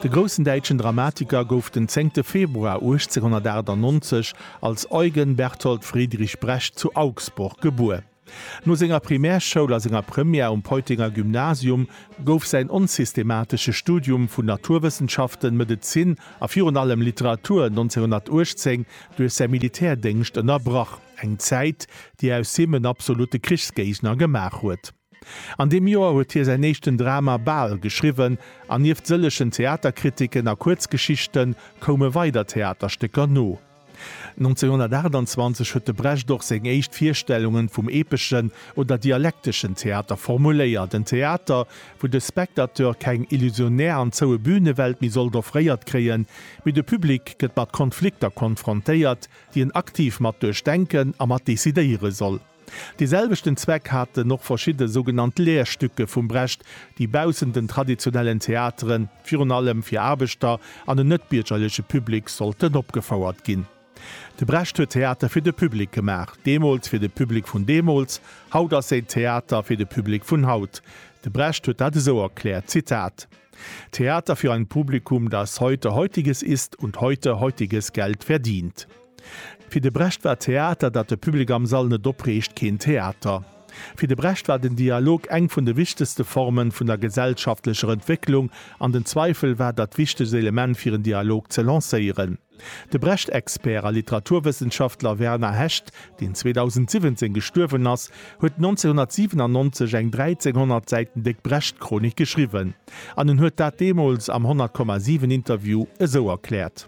De groussen däitschen Dramatiker gouf den 10 Februar 1898 als Eugen Berthold Friedrich Brecht zu Augsburg gebuer. No senger Primärschoul a senger Première um Peutinger Gymnasium gouf säin onsystematesche Studium vun Naturwëssenschaften, Medezin a virun allem Literatur 1918 duerch säi Militärdéngscht ënnerbrach, eng Zäit, déi aus him en absolutte Krichsgéigner gemaach huet. An deem Joer huet hie säin éischten Drama Bal geschriwwen, an nieft sëllegen Theaterkritiken a Kuerzgeschichte koume weider Theaterstécker no. 1928 huet de Brecht och seng éischt Virstellungen vum epeschen oder dialekteschen Theater formuléiert, en Theater, wou de Spectateur keng illusionär an zoue Bünewelt méi sollt offréiert kréien, mee de Public gëtt mat Konflikter konfrontéiert, déi en aktiv mat duerchdenken a mat decidéiere soll. Dee selwechten Zweck haten och verschidde sougenannt Lehrstücke vum Brecht, déi baussent den traditionellen Theateren, virun allem fir Aarbechter an en net-biergerleche Public, sollten opgefouert ginn. De Brecht huet Theater fir de Public gemaach, deemools fir de Public vun deemools, haut ass säi Theater fir de Public vun haut. De Brecht huet dat esou erkläert, Zitat, Theater für ein Publikum, das heute Heutiges isst und heute Heutiges Geld verdient. Fir de Brecht war Theater, dat de Public am Sall net opreegt, keen Theater. Fir de Brecht war den Dialog eng vun de wichtegste Formen vun der gesellschaftlecher Entwécklung, an den Zweifel war dat wichtegst Element fir en Dialog ze lancéieren. De Brecht-Expert a Literaturwëssenschaftler Werner Hecht, deen 2017 gestuerwen ass, huet 1997 eng 1300 Säiten déck Brecht-Chronik geschriwwen. An en huet dat deemools am 100,7 Interview esou erkläert.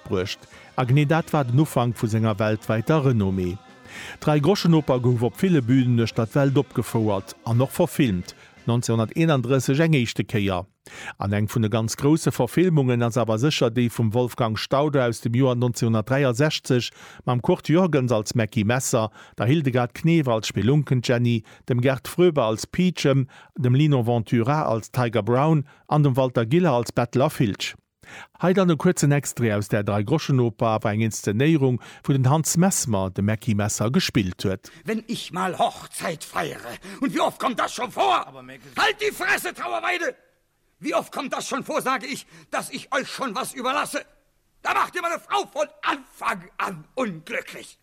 bruecht. A genee dat war den Ufank vu senger weltwäiter Renommée. D'Dräigroschenoper gouf op ville Bünen uechter d'Welt opgefouert an och verfilmt, 1931 eng éischte Kéier. An eng vun de ganz grousse Verfilmungen ass awer sécher déi vum Wolfgang Staude aus dem Joer 1963, mam Kurt Jürgens als Mackie Messer, der Hildegard Knef als Spelunkenjenny, dem Gerd Fröbe als Peachum, dem Lino Ventura als Tiger Brown an dem Walter Giller als Bettler Filch. Hei dann e kuerzen Extrait aus der Dreigroschenoper, awer eng Inszenéierung, wou den Hans Messmer de Mäcki Messer gespillt huet. Wenn ich mal Hochzeit feiere und wie oft kommt das schon vor? Halt die Fresse, Trauerweide! Wie oft kommt das schon vor, sage ich, dass ich euch schon was überlasse? Da macht ihr meine Frau von Anfang an unglücklich!